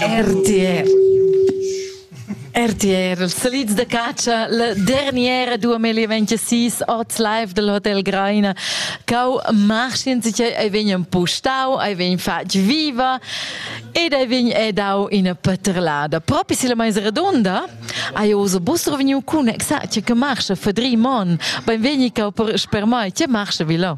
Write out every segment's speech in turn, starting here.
RTR RTR, els salits de catscha, la derniera dua melia 26, ot live del Hotel Greina. Cau marchin, sice ei vegn empustau, ei vegn fatg viva ed ei vegn edau ina paterlada. Propi si la mais redonda, hai oso bus reveniu cun exact che marcha fadri mon. Benvegni cau per mai, che marcha vi là?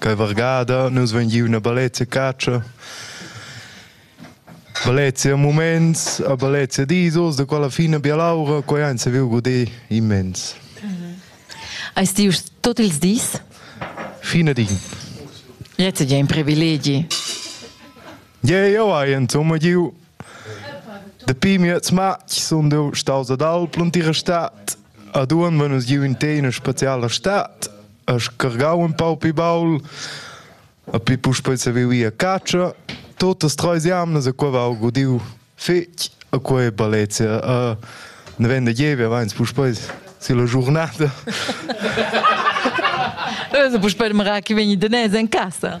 Quei vargada nus vein giu ina bellezia catscha, bellezia muments, a bellezia dis oz, da quella fina bialaura, quei ein saviu guder immens. Eis ti uss tot ils dis? Fine din. Jetzt è ein privilegi. Ja, ja, hai insomma giu. Dapi mi jetzt match sind du staus ad Alp und ihre Stadt. Ad un wenn uns giu in te in spezialer Stadt. scargau un pau pli baul, a pi puspei saviu ir a catscha. Totas treis jamnas a quei va gudiu fetg, a quei è Balezia. Uh, ne vende jeve vains puspei si la giornata. Puspei demora che vegni danese in casa.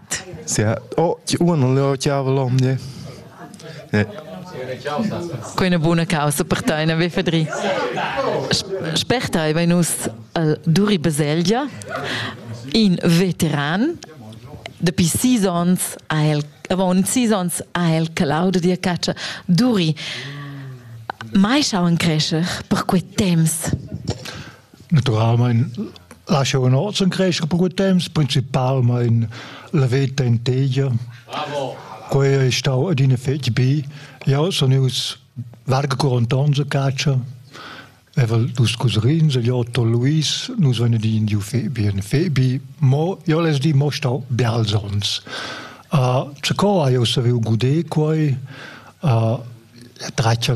Oh, ti uon non leo chiavo l'omne. Eh. Quei è una buona causa per te, una beffedri. Spertai vai nus al Duri Baselgia, in veteran, dapi sis ons ha el, avon sis ons ha el calau da dia caccia. Duri, mai schau in crescer per quei temps? Naturalmein lascia un ozen crescer per quei temps, principalmein la veta in tegia. Bravo! Quei è stau adina fetg bi. Ja, sono ius varga 40 anni a caccia. Evel dus cousins, gli Otto e Luis, nus venni di in fei bi, in fei bi, mo io les di mo stau bials ons. Uh, ce co ha io saviu gudé quei, uh, traccia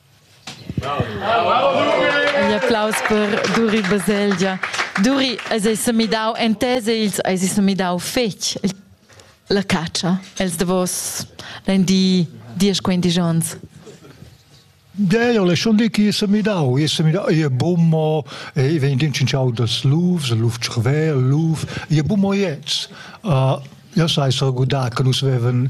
Igl applaus per Duri Baselgia. Duri, eis ei semidau entese ils eis ei semidau fetg la catscha els davos den di diesch quinti gions. Ja, ja, le schon di chi se midau, i se midau, i è bummo, i vegn din cinciau das lufs, luf tschrver, luf, i è bummo jetzt. Uh, ja sai so gudar che nus veven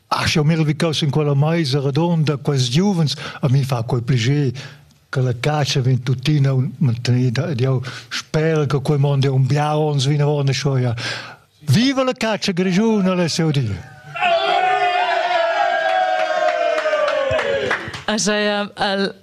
Ach, jau mira vi caussa in quella maisa redonda, quels giuvens, a mi fa quel pliger che la cacia vegn tuttina mantenida ed jau spero che quel mond è un biau ons vinavon e schoia. Viva la cacia grigiuna, le seu dir! Așa e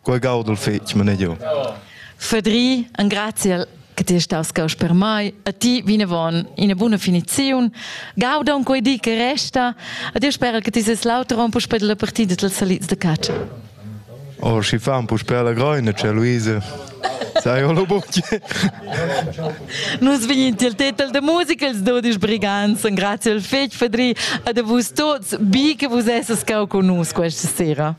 Quei gaudel fetg manegiu. Fedri, engraziel che ti stas caus per mai, a ti vinavon ina buna finiziun. Gaudon quei di che resta, a ti spera che ti ses l'auter on puspei dalla partida dals salids de catscha. Oh, schi fan puspei la groina, c'è Luisa. Sai, hallo bucce. Nus vegnin til tetel de musica els dudisch brigants, grazie al fetg Fedri, a de vus tots, bi che vus esses cau con nus questa sera.